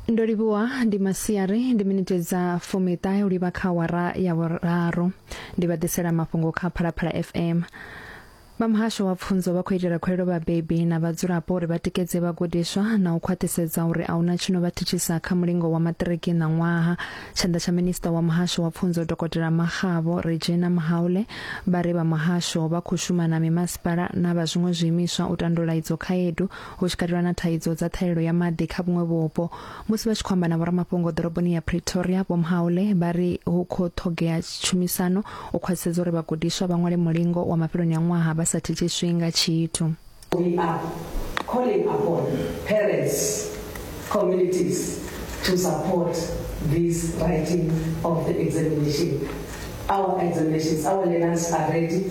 ndo livhuwa ndi masiari ndi miniti dza fumiṱahe u livha kha wara ya vhuraru ndi vha ḓisela mafhungo kha phalaphala fm vha muhasho wa pfunzo vha khou itela khuelo vhabebi na vhadzulapo uri vha tikedze vhagudiswa na u khwaṱhisedza uri a huna tshino vha thithisa kha mulingo wa maṱiriki na ṅwaha tshanḓa tsha minista wa muhasho wa pfunzo dokotela maxavo regina mahaule vha ri vha muhasho vha khou shuma na mimasipala na vha zwiṅwe zwiimiswa u tandula idzo khaedu hu tshi katelwa na thaidzo dza ṱhahelelo ya maḓi kha vhuṅwe vhupo. Musi vha tshi khou amba na vhoramafhungo ḓoroboni ya Pretoria, Vho Mhaule vha ri hu khou ṱhogea tshumisano u khwaṱhisedza uri vhagudiswa vha ṅwale mulingo wa mafheloni a ṅwaha vha sa thithiswi nga tshithu. We are calling upon parents, communities to support this writing of the examination. Our examinations, our learners are ready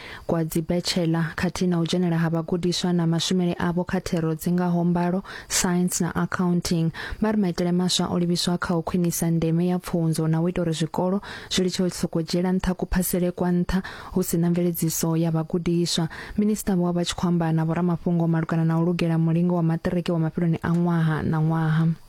kwa dzibetshela khathihi na u dzhenela ha vhagudiswa na mashumele avho kha thero dzi ngaho mbalo, science na accounting. Vha ri maitele maswa o livhiswa kha u khwinisa ndeme ya pfunzo na u ita uri zwikolo zwi litshe u sokou dzhiela nṱha kuphasele kwa nṱha hu si na mveledziso ya vhagudiswa. Minisṱa vho vha vha tshi khou amba na vhoramafhungo malugana na u lugela mulingo wa maṱiriki wa mafheloni a ṅwaha na ṅwaha.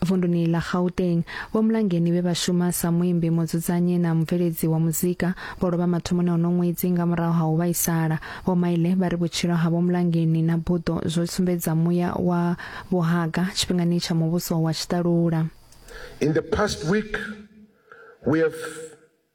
Vunduni ḽa Gauteng, Vho Mlangeni vhe vha shuma sa muimbi, mudzudzanyi na mubveledzi wa muzika vho lovha mathomoni a uno ṅwedzi nga murahu ha u vhaisala. Vho Maile vha ri vhutshilo ha Vho Mlangeni na buḓo zwo sumbedza muya wa vhuhaga tshifhingani tsha muvhuso wa tshiṱalula. In the past week, we have